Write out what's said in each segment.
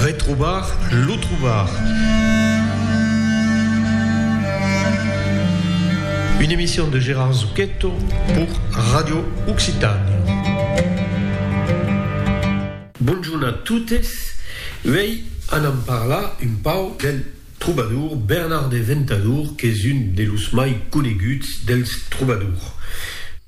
Retrobar lo trobar. Une emission de Gérard Zucchetto pour Radio Occitània. Bonjorn a totes, uèi anam parlar un pau del trobador Bernard de Ventadour qu'es un de los mai coneguts dels trobadors.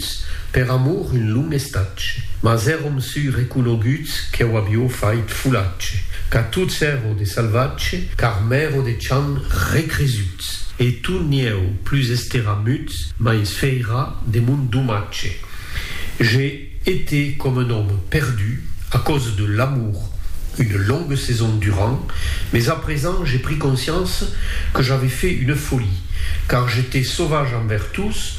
Sus per amor un long estatge. Mas èrom sui reconoguts que'u avió fait folatge, qu'a tots èro de salvatge, car m'èro de chan recresuts, e tu n'ieu plus estera muts, mais fèira de mon domatge. Je été com un òme perdu a causa de l'amor une longue saison durant, mais a present je pris conscience que j'avais fait une folie, car j'étais sauvage envers tous,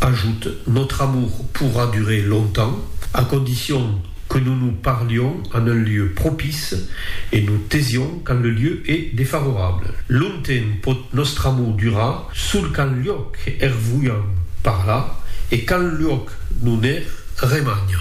Ajut, Notre amour pourra durer longtemps, à condition que nous nous parlions en un lieu propice et nous taisions quand le lieu est défavorable. Longtemps pòt nòstre amor durar sul quand luòc er voiam parlar e quand luòc non er remagna.